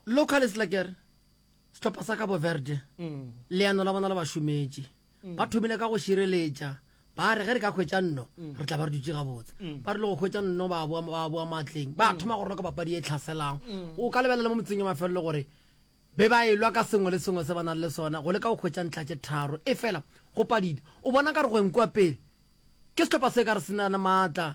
Localist la kere sehlopha sa Cabo Verde leano la bona le ba šometše. Ba thomile ka go šireletša, ba re ge re ka hwetša nno, re tla ba re dutše gabotse. Ba rile go hwetša nno ba boa, ba boa maatleng, ba thoma go roka papadi e tlhaselang. O ka lebelela le mo metseng ya mafelelo gore be ba elwa ka sengwe le sengwe se ba nang le sona go leka go hwetša ntlha tše tharo. Efela go padile. O bona nkare go enkwa pele ke sehlopha se ka re se na le maatla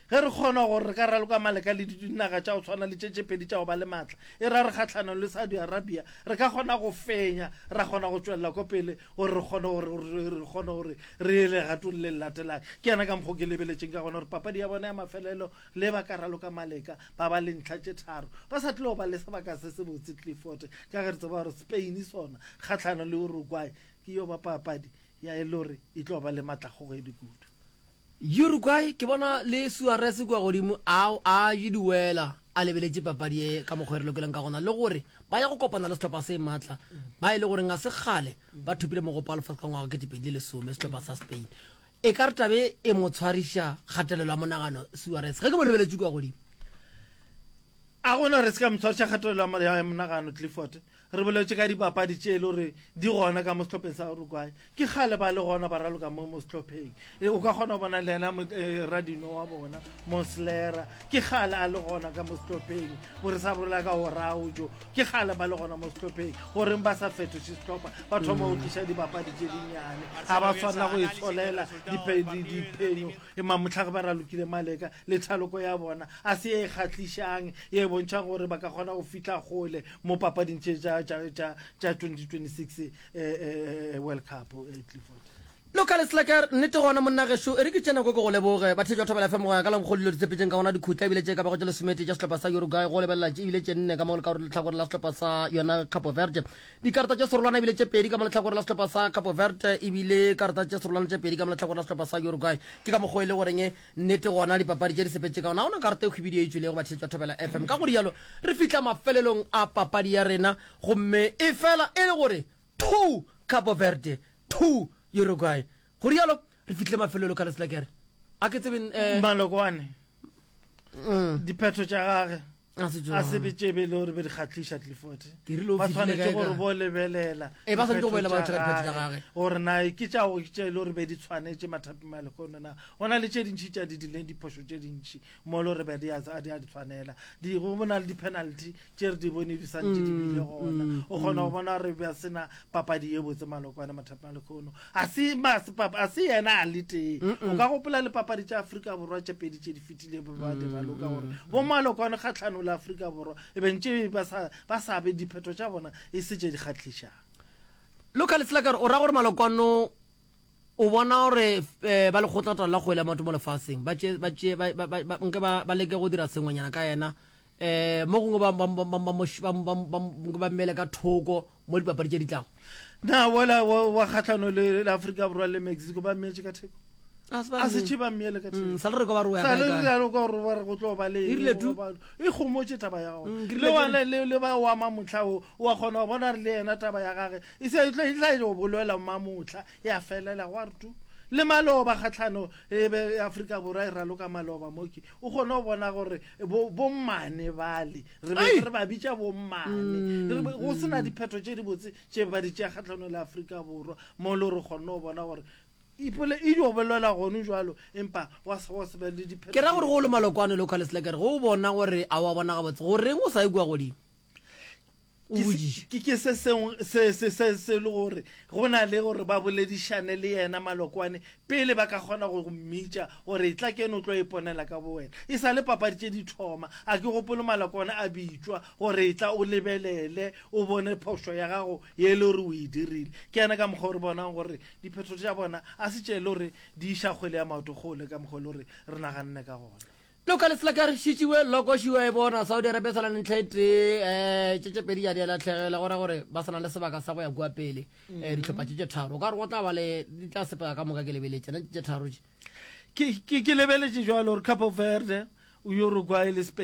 Ge re kgona gore re ka raloka maleka le dinaga tša go swana le tše tše pedi tša go ba le maatla, e ra re kgahlanong le Saudi Arabia, re ka kgona go fenya, ra kgona go tšwelela kwa pele gore re kgone gore, gore re kgone gore re ye legatong le le latelang. Ke yana ka mokgwa o ke lebeletšeng ka gona gore papadi ya bona ya mafelelo le ba ka raloka maleka ba ba le ntlha tše tharo, ba sa tlo ba le sebaka se sebotse. Clifford, Ka ge re tseba gore Spain sona kgahlanong le Uruguay ke yo ba papadi ya e le gore e tlo ba le maatlakgogedi kudu. Uruguay ke bona le Suarez kua godimo a a je diwela a lebeletše papadi ye ka mokgwa e re lokeleng ka gona le gore ba ya go kopana le sehlopha se matla ba e le goreng ga se kgale ba thopile mogopo wa lefatshe ka ngwaga wa 2010 sehlopha sa Spain e ka re tabe e mo tshwariša kgatelelo ya monagano Suarez ge ke mo lebeletše kua godimo a gona re se ka motshwariša kgatelelo ya monagano clifford Re boletše ka dipapadi tše e le gore di gona ka mo sehlopheng sa Uruguay. Ke kgale ba le gona ba raloka mo mo sehlopheng. E, o ka kgona go bona le yena e, radino wa bona Moslera. Ke kgale a le gona ka mo sehlopheng. Bo re sa bolela ka Oraujo. Ke kgale ba le gona mo sehlopheng. Goreng ba sa fetoše sehlopha? Ba thoma go tliša dipapadi tše dinnyane. Ga ba tshwanela go itsholela diphenyo. E mamotlha ge ba ralokile Maleka le thaloko ya bona a se e kgatlišang ye e bontšha gore ba ka kgona go fihla gole. mo papading tše tša 2026 eh, eh, eh, world cup eh, clifford Local Slacker, nnete gona monna gešo e re ke tšena ko ke go leboge bathe jwa thobela fm go ya ka lankgo dilo di tsepetseng ka gona dikhutla ebile tše ka bago tše lesomete tša sehlopha sa uruguay go lebelela tše ebile tše nne ka mo letlhakore letlhakore la sehlopha sa yona capo verde dikarata tše serolwana ebile tše pedi ka mo letlhakore la sehlopha sa capo verde ebile karata tše serolwana tše pedi ka mo letlhakore la sehlopha sa uruguay ke ka mokgwa e le goreng Nnete gona dipapadi tše di sepetše ka gona, ga gona karata e hwibidu e e tšwelego batšheletšwa Thobela FM. Ka go rialo re fihla mafelelong a papadi ya rena gomme e fela e le gore two Cabo Verde, two Uruguay. Go rialo re fihlile mafelelo Kaleslagger. A ke tsebe, eh. Malokoane, diphetho tša gage. a se be tše bele gore be di kgatlhiša clifford ba tshwanetse gore bo lebelela eh, gore na ke tšago ke tše e le gore be di tshwanetse mathapi ma lekono na go na le tše dintšhi tša di dileng diphošo tše dintšhi mo le gore be di a di tshwanela go bona le di-penalty tše re di bone di santse di bile mm, gona mm, o kgona go mm. bona gore ba sena papadi ye botse malokwane mathapi ma lekono A se mase papa, a se yena a le tee. O ka gopola le papadi tša Afrika Borwa tše pedi tše di fetile be ba di raloka gore bo malokwane ga tlhano la Afrika Borwa e beng tše ba sa ba sa be diphetho tša bona e se tše di kgatlišang. Local Leselakare o ra gore malokwano o bona gore eh, ba lekgotlata la kgwele ya maoto mo lefaseng ba tše ba tše ba ba- ba- ba- nke ba ba leke go dira sengwenyana ka yena eh mo gongwe ba ba- ba- ba- ba- mo sh- ba- ba- ba- ba mmele ka thoko mo dipapadi tše di tlago na wala wa kgahlano le aforika borwa le mexico ba mmeetse ka theko a se tšheba mmele ka mm, sale re kwa gore wa re go tlo ba le irile tu e gomotse taba ya gone mm, le wana le le ba wa mamotla o wa gona bona re le yena taba ya gage e se e tlo e tla go boloela mamotla ya felela gwa re tu le maloba kgatlhano e be Afrika borwa e raloka maloba moki o gone go bona gore bo bo mane bale re be re ba bitša bommane mm, go sena mm. diphetho tše di botse tše ba di tšea kgatlhanong le aforika borwa mo le re kgonne go bona gore ipole e dio bolela gone jalo empa wa se wa se be le diphetho ke ra gore go le malokwane local slacker go bona gore a wa bona ga botse go reng o sa e kwa godimo ke se sengwe se se se se le gore go na le gore ba boledišane le yena malokwane Pele ba ka kgona go go mmitša gore etla keno o tlo iponela ka bowena. E sa le papadi tše di thoma, a ke gopole maloko ona a bitšwa gore etla o lebelele o bone phošo ya gago ye e le gore o e dirile. Ke yena ka mokgwa o re bonang gore diphetho tša bona a se tše e le gore di iša kgwele ya maoto kgole ka mokgwa o e le gore re naganne ka gona. Local Slacker Shichiwe Loko Shiwa e bona Saudi Arabia sa na le ntlha e tee eh tše tše pedi ya di a latlhegela go ra gore ba sa na le sebaka sa go ya kwa pele eh ditlhopha tše tše tharo o ka re go tla ba le di tla sepela ka moka ke lebeletše na tše tše tharo tše ke ke ke lebeletše jwalo gore capo verde uruguay le spain